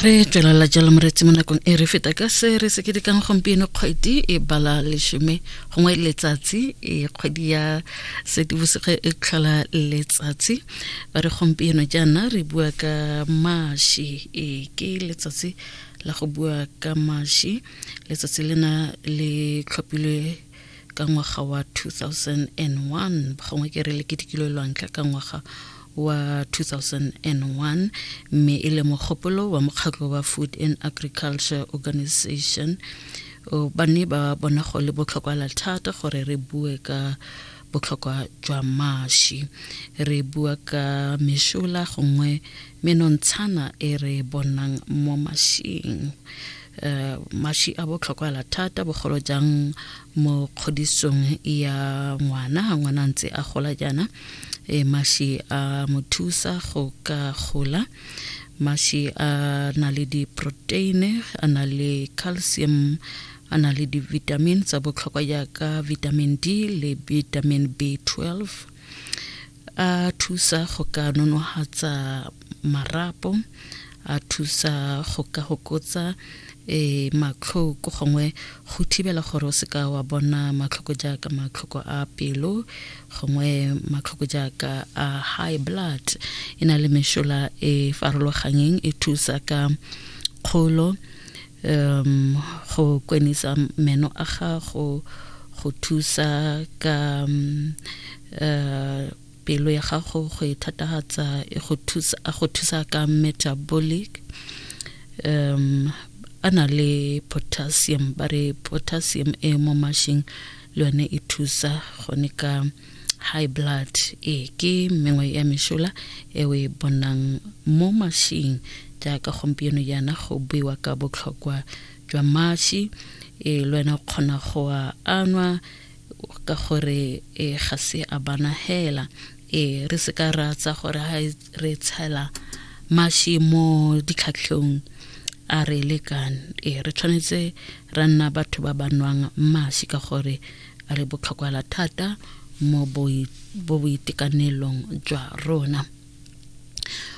re tswelela jalo moretsi mo nakong e re feta ka se re se ketekang gompieno kgwedi e bala lesome gongwe letsatsi e kgwedi ya sedibosege e tlhola letsatsi ba re gompieno jaana re bua ka mashi e ke letsatsi la go bua ka mashi letsatsi lena le tlhophilwe ka ngwaga wa 2001 gongwe ke re leketekilo e lwantlha ka ngwaga wa 2001 mme e le mogopolo wa mokgatlho wa food and agriculture organization ba ne ba bona go le botlhokwa la thata gore re bue ka botlhokwa jwa mashi re bua ka meshola gongwe menontshana e re bonang mo mashing um mashi a botlhokwala thata bogolo jang mo kgodisong ya ngwana ga ngwana ntse a gola jaana e mashi a mo thusa go ka gola mashi a na le diproteine a na le calcium a na le di-vitamin tsa botlhokwa jaaka vitamin d le vitamin b 12 a thusa go ka nonohatsa marapo a thusa go ka gokotsa e matlhoko gongwe go thibela gore o seka wa bona matlhoko jaaka matlhoko a pelo gongwe matlhoko jaaka a high blood e na le mešola e farologanyeng e thusa ka kgolo um go kwenisa meno a gago go thusa ka um, uh, pelo ya gago go e thatagatsa e go thusa a go thusa ka metabolic um a na le potassium ba re potassium e mo mashing le yone e thusa gone ka high blood e ke mengwe ya mešola e o e bonang mo mashing jaaka gompieno yana go buiwa ka botlhokwa jwa mashi e le wena o kgona go a anwa ka gore e ga se a bana hela e re se ka ra tsa gore ha re tshela mashi mo ditlhatlhong a re lekane e re tshwanetse ra nna batho ba ba nwang mashi ka gore a re botlhokwa thata mo boitekanelong jwa rona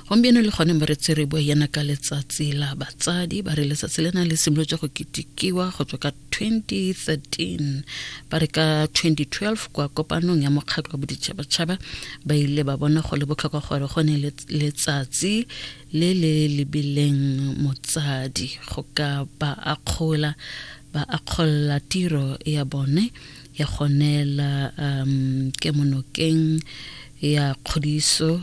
gompieno le gone mo re tsere bo yana ka letsatsi la batsadi ba re letsatsi le na le simolotse go ketikiwa go tswa ka 2013 ba re ka 2012 kwa kopanong ya mokgatlho wa boditšhabatšhaba ba ile ba bona go le botlhokwa gore go ne letsatsi le le lebileng motsadi go ka ba akgola ba akgolla tiro ya bone ya go neela um, kemonokeng ya kgodiso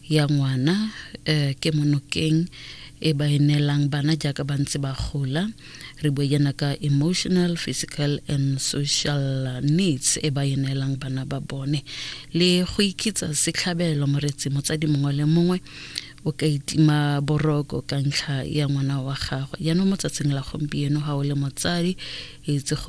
ya ngwana eh, kemonokeng e ba e neelang bana jaaka ba ntse ba gola re bue yana ka emotional physical and social needs e ba e neelang bana ba bone le go ikitsa setlhabelo moretsi motsadi mongwe le mongwe o ka itima boroko ka ntlha ya ngwana wa gagwe yaanong mo tsatsing la gompieno ga o le motsadi itse